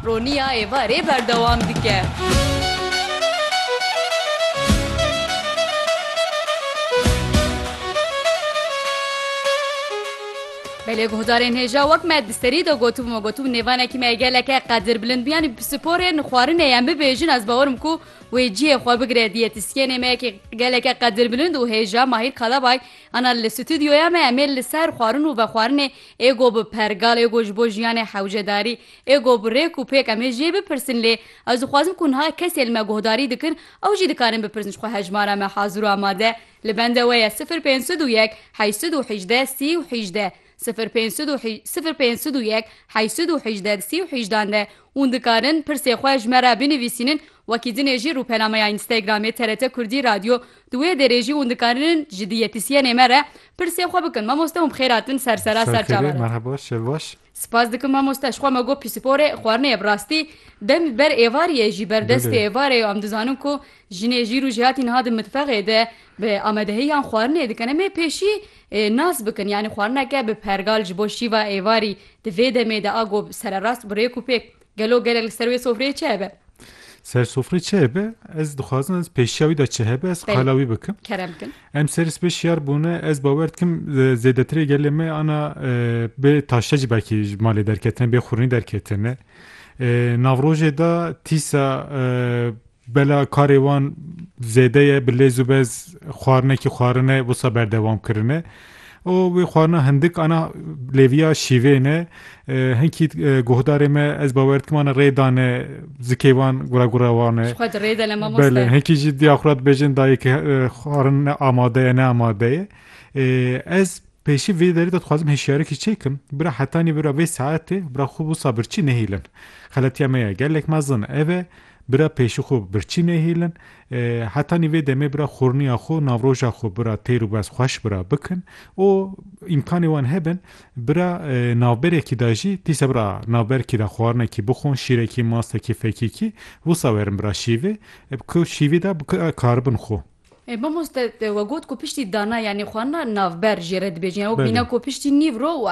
Roniya êvarê berdewam dike. Belê guhdarên hêja wek me di serî de gotibû me gotibû nêvanekî me geleke qedirbilind bû yanî bi sporê xwarinê em bibêjin ez bawerim ku wê cihê xwe bigire diyetisyênê me yekê geleke qedirbilind û hêja Mahîr Kalabay ana li stûdyoya me em ê li ser xwarin û vexwarinê Ê go bi pergal, ê go ji bo jiyanê hewcedarî, ê go bi rêk û pêk em ê jê bipirsin lê ez dixwazim ku niha kesê li me guhdarî dikin ew jî dikarin bipirsin ji xwe hejmara me hazir û amade li bende we ye sifir pênc sed û yek heşt sed û hîjdeh sî û hîjdeh sifir pênc sed û sifir pênc sed û yek heşt sed û hîjdeh di sî û hîjdan de hûn dikarin pirsê xwe ji me re binivîsînin wekî dinê jî rûpenameya Instagramê TRT Kurdî Radyo Di wê derê jî hûn dikarinin ji diyetîsyenê me re pirsê xwe bikin. Mamoste hûn bi xêr hatin ser sera ser çavan re. Merhaba şev baş. Spas dikim mamoste ji xwe me got pîsporê xwarinê ye bi rastî dem li ber êvarî ye jî berdestê Belê. êvarê ye û em dizanin ku jinê jîr û jêhatî niha di mitfexê de bi amadehiyan xwarinê dikin em ê pêşî nas bikin yanî xwarineke bi pergal ji bo şîva êvarî di vê demê de a got sererast bi rêk û pêk Gelo gelek li ser wê sofreyê çi hebe? Ser sofrê çi hebe? Ez dixwazim ez pêşiya wî de çi hebe ez qala wî bikim. Kerem bikin. Em ser spê şiyar bûne ez bawer dikim zêdetirê gelê me ana bê taşte jî belkî ji malê derketine bê xûrinî derketine. Navrojê de tîsa Bela karê wan zêde ye bi lêz û bez xwarinekî xwarine wisa berdewam kirine û wê xwarina hindik ana lêviya şîvê ne hinkî guhdarê me ez bawer dikim ana rê dane zikê wan gura gura wan e belê hinkî jî diya xwe dibêjin dayê ki xwarin ne amade ye ne amade ye ez pêşî vê derê de dixwazim hişyarikî çêkim bira hetanî bira vê saetê bira xwe wisa birçî nehîlin xeletiya me ya gelek mezin ev e Bira pêşî xwe birçî nehêlin. Hetanî vê demê bira xurniya xwe û navroja xwe bira têr û bez xweş bira bikin û îmkanê wan hebin bira navberekî de jî dîsa bira navberkî de xwarinekî bixwin, şîrekî, mastekî, fekîkî wisa werin bira şîvê ku şîvî de bikaribin xwe. Mamoste we got ku piştî dana yanî xwarina navber jê re dibêjin û bîne ku piştî nîvro û